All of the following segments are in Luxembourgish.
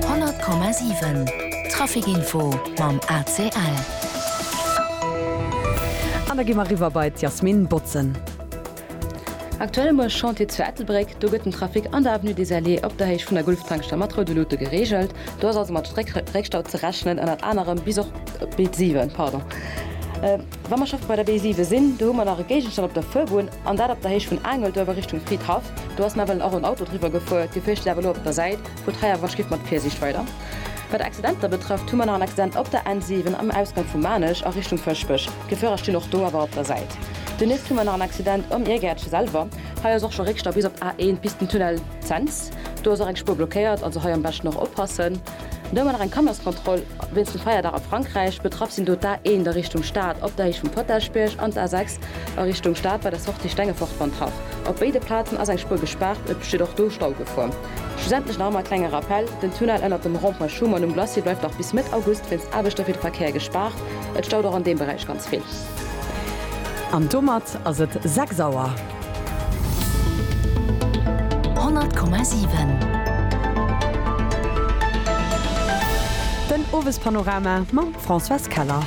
100,7 Traficinfo mam ACL. An da gi mer eriwwer bei d'Yasmine Bautzen. Aktuell um Chantier zu Ettelbréck. Do gëtt den Trafic an der Avenue des Alliés op der Héicht vun der Gulftankstell mat roude Lute gereegelt. Do ass also mat Réckstau ze rechnen, ënnert anerem bis och op d'Bild 7. Wa mer scho bei der B7 sinn, do hu mer nach e Géigenstand op der Fuerbunn, an dat op der Héicht vun Aangelduerf a Richtung Fridhaff. Do ass nawell och en Auto driwwer gefuer. Dir fiercht iech awer elo op der Säit vu Tréier wënsch giff. Mat Virsiicht weider. Wat Accidenter betrëfft, hu mer nach en Accident op der N7 am Ausgank vu Maarnech a Richtung Fëschbech. D'Chauffeure stinn och do awer op der Säit. Donieft hu mer nach en Accident am Iergäertche selwer. Hei ass och scho Réckstau bis op d'A1 bis den Tunnel Cents. Do ass och eng Spuer blockéiert, also hei am beschten och oppassen. Do hu mer nach eng Kannerskontroll wéinst dem Feierdag a Frankräich. Betraff sinn do d'A 1 a Richtung Stad op der Héicht vum Potagebierg an d'A 6 a Richtung Stad bei der Sortie Stengefort-Bontrach. Op béide Plazen ass eng Spuer gespaart, et besteet och do Staugefor. Schlussendlech nach emol e klenge Rappell, Den Tunnel ënnert dem Rond-Point Schuman um Glacis bleift nach bis Mëtt August wéinst Aarbechter fir de Verkéier gespaart. Et staut och an deem Beräich ganz vill. An domat ass et 6 Auer. 100,7. Den Owespanorama mam Françoise Keller.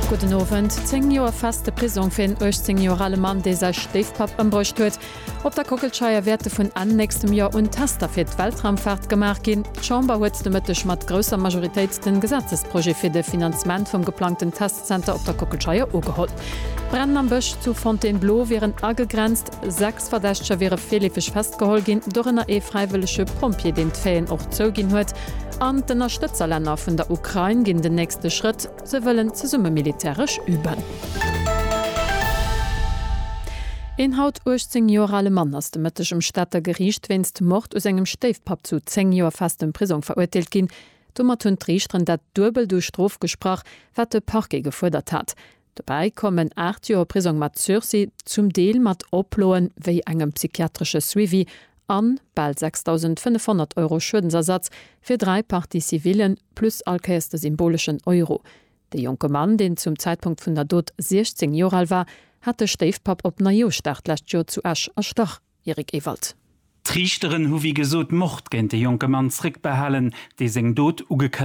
Gudden Owend. Zéng Joer feste Prisong fir een 18 Joer ale Mann, dee säi Stéifpapp ëmbruecht huet. Op der Kockelscheier wäerte vun Enn nächstem Joer un Tester fir d'Weltraumfaart gemaach ginn. D'Chamber huet de Mëtteg mat grousser Majoritéit de Gesetzesprojet fir de Finanzement vum geplangten Test Zenter op der Kockelscheier ugeholl. D'Brennen am Bësch zu Fontainebleau wieren agegrenzt. Sechs Verdächteger wiere virleefeg festgeholl ginn, dorënner ee fräiwëllege Pompjee, deen d'Faiten och zouginn huet. An d'Ënnerstëtzerlänner vun der Ukrain ginn den nächste Schrëtt, se wëllen zesumme militäresch üben. Een haut 18 Joer ale Mann ass de Mëtteg um Stater Geriicht wéinst Mord u sengem Stéifpapp zu 10 Joer festem Prisong verurteelt ginn. Domat hunn d'Riichteren dat Duebelt u Strof gesprach, wat de Parquet gefuerdert hat. Dobäi kommen 8 Joer Prisong mat Sursis, zum Deel mat Oploe wéi engem psychiatresche Suivi, an bal 6.500 Euro Schuedensersatz fir dräi Parties civillen, plus allkéiers de symboleschen Euro. De jonke Mann, deen zum Zäitpunkt vun der Dot 16 Joer al war, hat de Stéifpapp op Neijousdag d'lescht Joer zu Esch erstach. Eric Ewald. D'Riichteren hu wéi gesot Mord géint de jonke Mann zréckbehalen, dee seng Dot ugekënnegt hat.